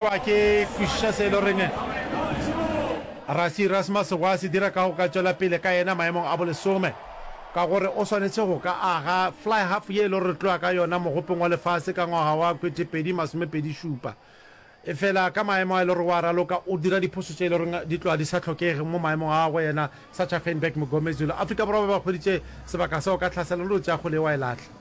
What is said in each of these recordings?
Kwa ke kwešiša se e le goreng Rasi Erasmus gwa se dira ka go ka tšwela pele ka yena maemong a bolesome, ka gore o swanetše go ka aga flyhalf ye e le gore re tloga ka yona mogopeng wa lefase ka ngwaga wa kwetepedi masomepedi šupa. Efela ka maemo a e le gore wa raloka, o dira diphošo tše e le gore di tloga di sa hlokege mo maemong a go yena, Sacha Feinberg Mngomezulu. Afrika Borwa ba ba hweditše sebaka seo ka tlhaselo le go tšea kgole yeo wa e lahla.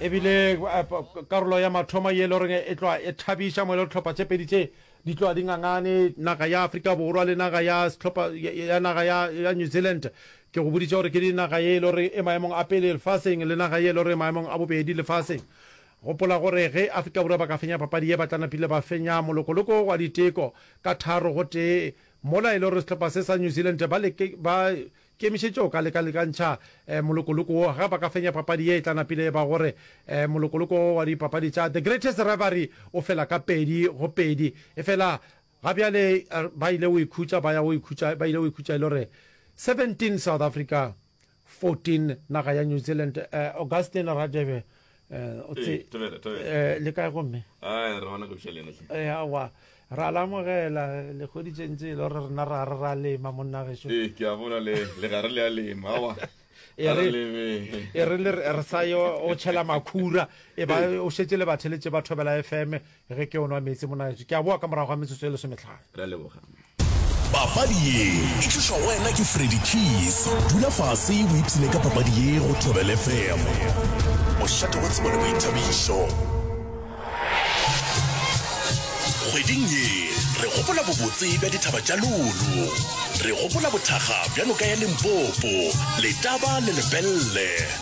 e bile karolo ya mathomo ye e le goreng e tloa e thabiša mo e le gore tlhopha tše pedi tše di tloa di ngangane naga ya Afrika Borwa le naga ya setlhopha ya naga ya ya New Zealand ke go boditše gore ke di naga ye e le gore e maemong a pele lefaseng le naga ye e le gore maemong a bobedi lefaseng gopola gore ge Afrika Borwa ba ka fenya papadi ye ba tla napile ba fenya molokoloko wa diteko ka tharo go tee mola e le gore setlhopha se sa New Zealand ba leke ba Kemišetša o ka lekalekantšha molokoloko wo ge ba ka fenya papadi ye e tla napile e ba gore molokoloko wo wa dipapadi tša The Greatest Reverie o fela ka pedi go pedi. Efela ga bjale ba ile go ikhutša ba ya go ikhutša ba ile go ikhutša e le gore 17 South Africa 14 naga ya New Zealand. Augustine Radebe le kae gomme awa ra lamogela lekgoditseng tse e le gore rena ra re ra lema monna geso ke a bona le gare le a lema awa e re le re sa yo o tšhela makhura e ba o šetse le batheletše ba thobela fm Ge ke o nwa meetse monaletso, ke a boa ka morago ga metsotso e lesometlhano. Re a leboga. Papadi ye e tlišwa go wena ke Freddy Keys. Dula fase o ipshine ka papadi ye go Thobel FM. Mošate wa tsebo le boithabišo. Kgweding ye re gopola bobotse bja dithaba tša Lolo. Re gopola bothakga bja noka ya Limpopo, Letaba le Lepelle.